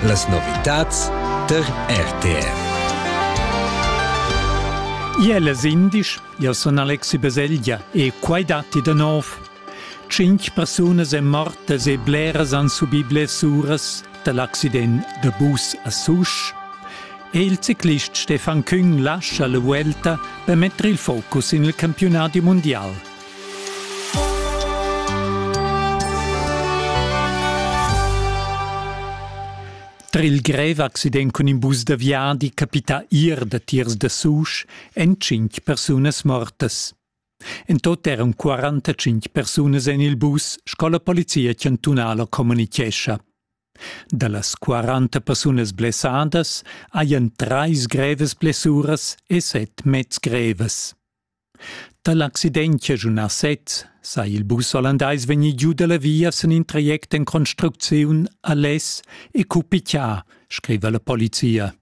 Las novitads tar RTR. Iel es indisch, io sun Alexi Baselgia e quai datti da nov. Tschinch persunas èn mortas e bleras han subì blessuras da l'accident da bus a Susch. E il ciclist Stefan Küng lascha la vuelta per mettere il focus in il campionati mondial. Tra il grev accident cun in bus da viadi capita ir da tiers da Susch en cinq persunas mortas. En tot eran 45 persunas en il bus, sco la polizia chantunala communichescha. Da las 40 persunas blessadas hajan trais grevas blessuras e set mezs grevas. Da l'accident chaschunà sez sai il bus ollandais vegnir giu da la via sin in traject en construcziun a Les e cupitgà, scriva la polizia.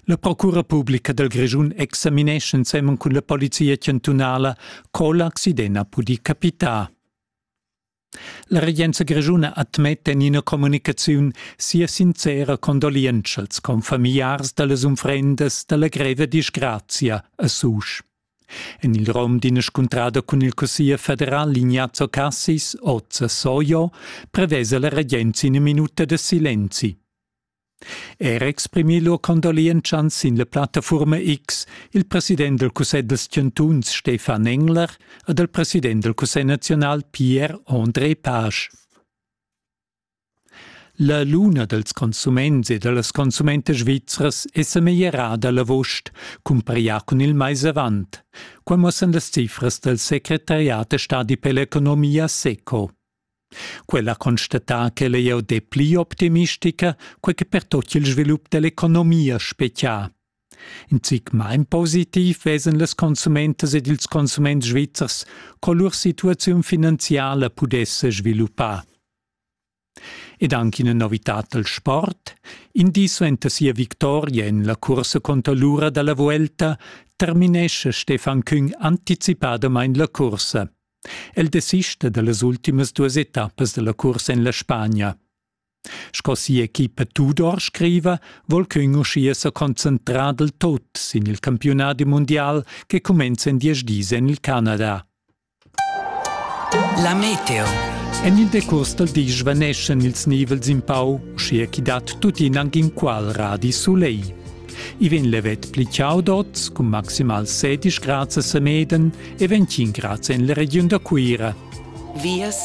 La procura publica dal Grischun examinescha ensemen cun la polizia chantunala co l'accident ha pudì capitar. La regenza grischuna admetta en ina communicaziun sia sincera condolientscha als confamiliars dallas unfrendas dalla greva disgrazia a Susch. En il rom d'ina scuntrada cun il cussier federal Ignazio Cassis, oz a Soio, prevesa la regenza ina minuta de silenzi. Er exprimi lur condolientschans sin la plattafurma X il president del cussegl dels chantuns Stefan Engler ed il president del cussegl nazional Pierre-André Pasch. La luna dels consuments e dellas consumentas svizras è semeglierada l'avost, cumparià cun il mais avant. Qua muossan las cifras del secretariat e stadi per l'economia SECO. Quella constata ch'el ei jau depli optimistica, quei che per tot il svilup dell'economia spetgia. In zic mein positiv vesen las consumentas ed ils consuments svizzers, co lur situaziun finanziala pudesse sviluppar. Ed anche una novità dal sport, indiso enta sia victoria en la cursa contro l'ura dalla Vuelta, terminesce Stefan Küng anticipadamain la cursa. El desista dallas ultimas duas etappas dalla cursa en la Spagna. Sco sia equipa Tudor scriva, vol ch'ün uschia sa concentrar del tot sin il campiunadi mundial che cumenza in diesch dis en il Canada. La meteo. En il decurs dal di svaneschan ils nivels in pau, uschia chi dat tuttina anc inqual radi soleil. I vegn levet pli chaudots cun maximal 16 grads a Semeden e 25 grads en la regiun da Cuira. Vias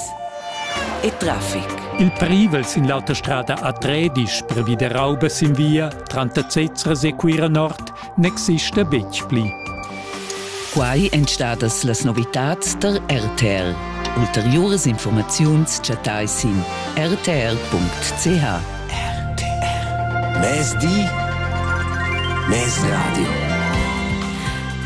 e traffic. Il privel sin l'autostrada a Tredisch per via da Rauba sin via tranter Zezzers e Cuira Nord n'exista betg pli. Quai èn stadas las novitads tar RTR. Ulteriuras informaziuns chattai sin rtr.ch. RTR. Mezdi. Mezradio.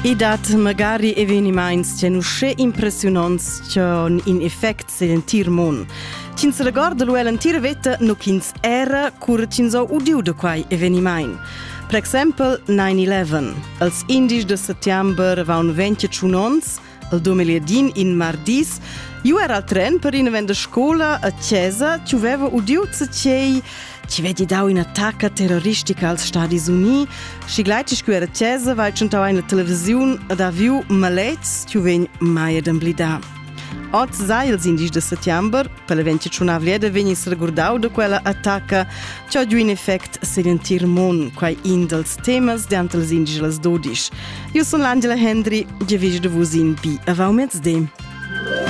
I dat magari evenimaints ch'en uschè impressiunants ch'han in effect sen l'entir mund. Ch'ins regorda lu l'entira veta nu ch'ins era cur ch'ins ha udiu da quai evenimaint. Per exempel 9-11. Als indies de settembre avevano 21 onns, al 2000 in mardis, io era al tren per in event de scola a Chiesa, ti aveva udiu cei ci vedi dau un'attacca terroristica als Stati Uni, și gleitisch cu era Chiesa vai tschentau eine Television ed ha viu maletgs, ti vegn mai ad emblidar. Oz sa ils indigens da settember per l'event tschunavlieda vegni regurdau da quella attacca che ha giu in effect sin l'entir mund, quai in dals temas d'anter els indigens las dodisch. Io sun l'Angela Hendry, ge vegio da vus in bi avau mezdi.